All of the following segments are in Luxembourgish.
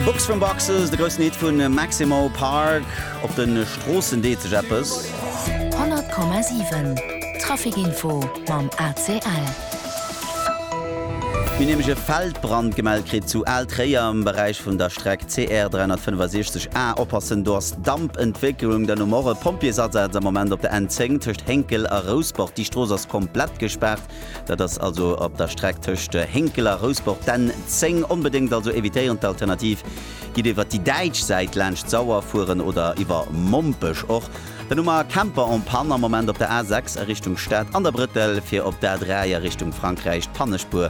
Box from Boxes, de groussen Hit vun Maximo Park, op den Stroossen deet sech eppes. 100,7 Traficinfo mam ACL. Mir hunn nämlech e Feldbrand gemellt kritt zu Al Tréier am Beräich vun der Streck CR 365 A. Oppassen, do ass Dampentwécklung. Dann hu mer och e Pompjeesasaz am Moment op der N10 tëscht Hénkel a Rousport. Déi Strooss ass komplett gespaart. Dat ass also op der Streck tëscht Hénkel a Rousbord d'N 10. Onbedéngt also evitéieren. D'Alternativ, Gitt iwwer déi däitsch Säit laanscht d'Sauer fueren oder iwwer Mompech. Och den Hummer Camper en panne am Moment op der A 6 a Richtung Stad an der Brëttel fir op d'A 3 a Richtung Frankräich d'Pannespuer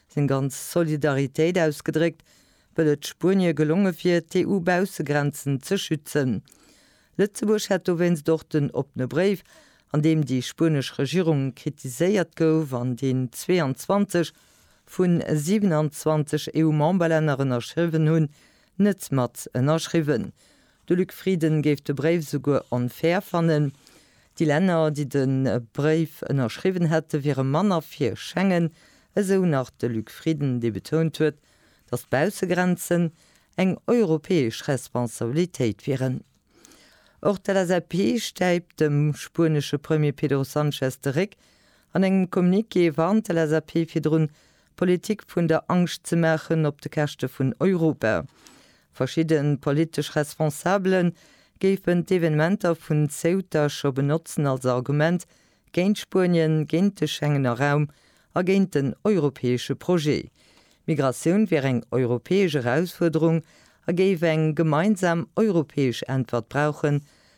seng ganz Solidaritéit ausgedréckt, wëll et Spuenie gelonge wier, d'EU-Baussegrenzen ze schützen. Lëtzebuerg hätt dowéinst och den oppene Bréif, an deem déi spuenesch Regierung kritiséiert gouf an deen 22 vu 27 EU-Memberlänner ënnerschriwwen hunn, net mat ënnerschriwwen. De Luc Frieden géif de Bréif souguer onfair fannen. Déi Länner, déi de Bréif ënnerschriwwen hätte wiere manner fir Schengen, esou nach de Luc Frieden, dee betount huet, datt d'Baussegrenzen eng europäesch Responsabilitéit wieren. Och d'LSAP stäipt dem spuenesche Premier Pedro Sanchez de Réck. An engem Communiqué warnt d'LSAP virdrun, Politik vun der Angscht ze maachen op de Käschte vun Europa. Verschidde politesch Responsabele géifen d'Evenementer vun Ceuta scho benotzen als Argument géint Spuenien, géint de Schengener Raum a géint den europäesche Projet. Migratioun wier eng europäesch Erausfuerderung a géif eng gemeinsam europäesch Äntwert brauchen,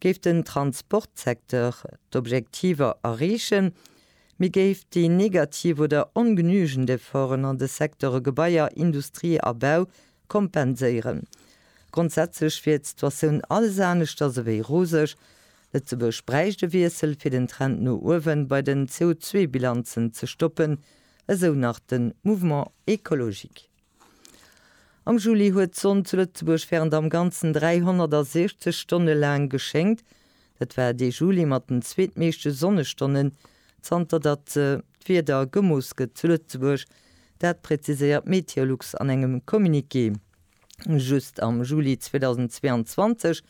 Géif den Transportsecteur d'Objektiver erreechen, mee géif déi negativ oder ongenügend Efforten an de Secteure Gebaier, Industrie a Bau kompenséieren. Grondsätzlech wier d'Situatioun alles aneschters ewéi roseg. Lëtzebuerg bräicht e Wiessel, fir den Trend no uewen bei den CO2-Bilanzen ze stoppen, esou nach de Mouvement Ecologique. Am Juli huet d'Sonn zu Lëtzebuerg wärend am Ganzen 360 Stonne laang geschéngt. Dat war dee Juli mat den zweetmeeschte Sonnestonnen, zanter datt d'Wieder gemooss gëtt zu Lëtzebuerg. Dat präziséiert d'Meteolux an engem Communiqué. Just am Juli 2022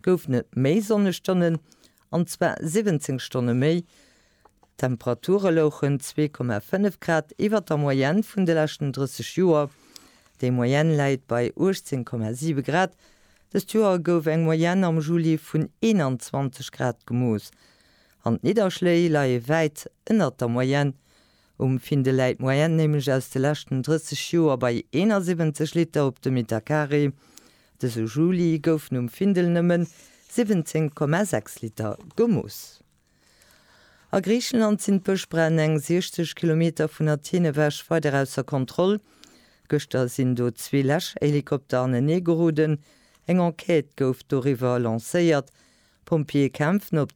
goufen et méi Sonnestonnen. an zwar 17 Stonne méi. D'Temperature louchen 2,5 Grad iwwer der Moyenne vun de leschten 30 Joer. Déi Moyenne läit bei 18,7 Grad. Dëst Joer gouf eng Moyenne am Juli vun 21 Grad gemooss. An d'Nidderschléi leie wäit ënnert der Moyenne, Um Finn de läit d'Moyenne nämlech aus de leschten 30 Joer bei 71 Liter op de Metercarré. Dëse Juli goufen um Findel nëmmen 17,6 Liter gemooss. A Griicheland sinn d'Bëschbränn eng 60 Kilometer vun Athen ewech weider ausser Kontroll. Gëschter sinn do zwee Läschhelikopter anenee geroden. Eng Enquête gouf doriwwer lancéiert. D'Pompjeeë kämpfen op